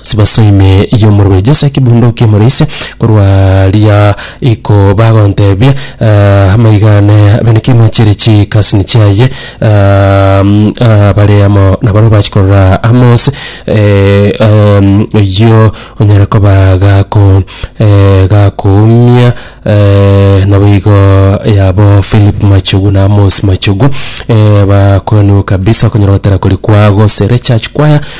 Sibaso ime y'omorwa o Jese ekebunduki omore ise, korwa riria iko bagontebia, Amaiga ane abeneke ime chire chikasini chiaye, bare amo nabarabwo bachi korora amo ase oyio onyare koba gaku gakuumia, naboigo yabo Philip Machogu na Amos Machogu, bakoenigwe kabisa okonyora gotera koria kwabo gose rechurch choir.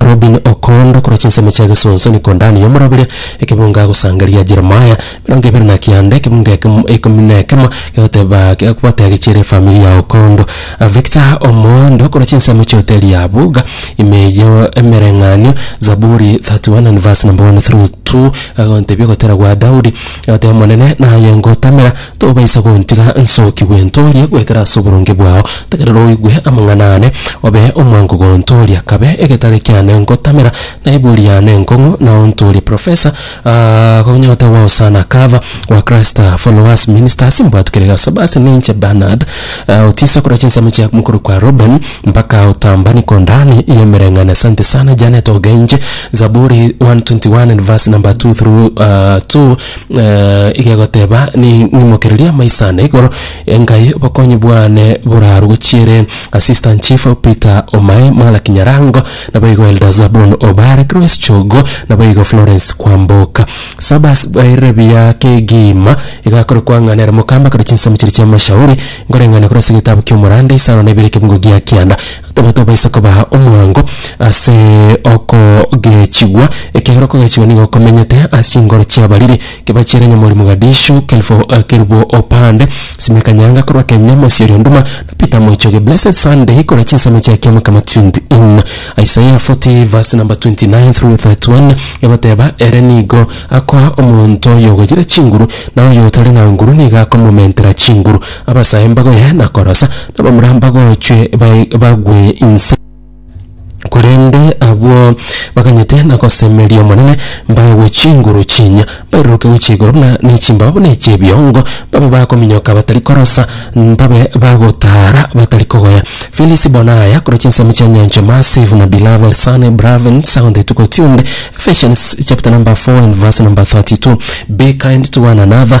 Rubini okoonda korwa chinsemo chia Gesunsu, niko Dani yomorabire ekebunga agosangereria Jeremiah. Emerongo ebere na kianda ekebunga ekemo ikomi na ekemo egoteba gekobata gechiere efamiri yao kondo. Victor Omondo korwa chinsemo chia hoteli ya Buga, ime eyio emereng'anio, Zaburi 31 and verse number 1 through 2, agontebia ogotera gwa Daudi, agoteba, Omonene naye ngotamera, Tobaisa gontiga nsokigwe ntoorie goetera ase oboronge bwao, tegerera oigwe amang'ana aane, obe omwango gontooria. Kabe egetare kiane ngotamera, na ebuori yane enkong'u, na ontoorie Professor, aah, konya otewa Hosanna Cover, wa Christ Followers Ministers, mbwatu kere gasaba ase ninche Bernard, aah, otiise korwa chinsemo chia mokorokwa Reuben, mpaka otamba Nikondani ya emereng'ana asante sana Janet Ogenje, Zaburi 121 and verse number 2 through, aah, 2. igegoteba, Nimokererie amaiso aane igoro, engae obokonyi bwane borarwe gochiere. Assistant Chief Peter Omae, Malaki Nyarango, naboigo Elder Zabon Obare, Grace Chogo, naboigo Florence Kwamboka. Sabas bairire buya kegima, iga akore koang'ana ere mokamba kare chinsemo chiria chi'amashauri, nkoreng'ane korwa ase egetabu ki'omoranda isano na ibere ekebungo gia kianda. Taba tobaisa koba omwango ase okogechigwa, ekiagera okogechigwa nigo komenyete ase chingoro chi'abariri. Kebachera Nyamori Mogadishu, Kelfo Kerubo Opande, Sime Kanyanga korwa Kenya, Mosi oria Nduma, na Peter Moichoge, Blessed Sunday korwa chinsemo chia Kiamakama 24. Isaiah 40 verse number 29 through 31 egoteba, Ere nigo akoa omonto oyogoyire chinguru, na oyotari na nguru nigo akomomentera chinguru. Abasae mbagoye na korosa, na abamura mbagochwe bae- bagwe inse. Korende abwo baganyete na gosemeria Omonene mbaegwe chinguru chinya, bairuruke gochia igoro buna ne chimbaba buna echi'ebiongo, babe bakominyoka batari korosa, mbabe bagotaara batari kogoya. Felisi bona aya korwa chinsemo chia nyanchwa Massive na Beloved Sunny Bravin Sound etuko tiundi Ephesians chapter number 4 and verse number 32 Be kind to one another,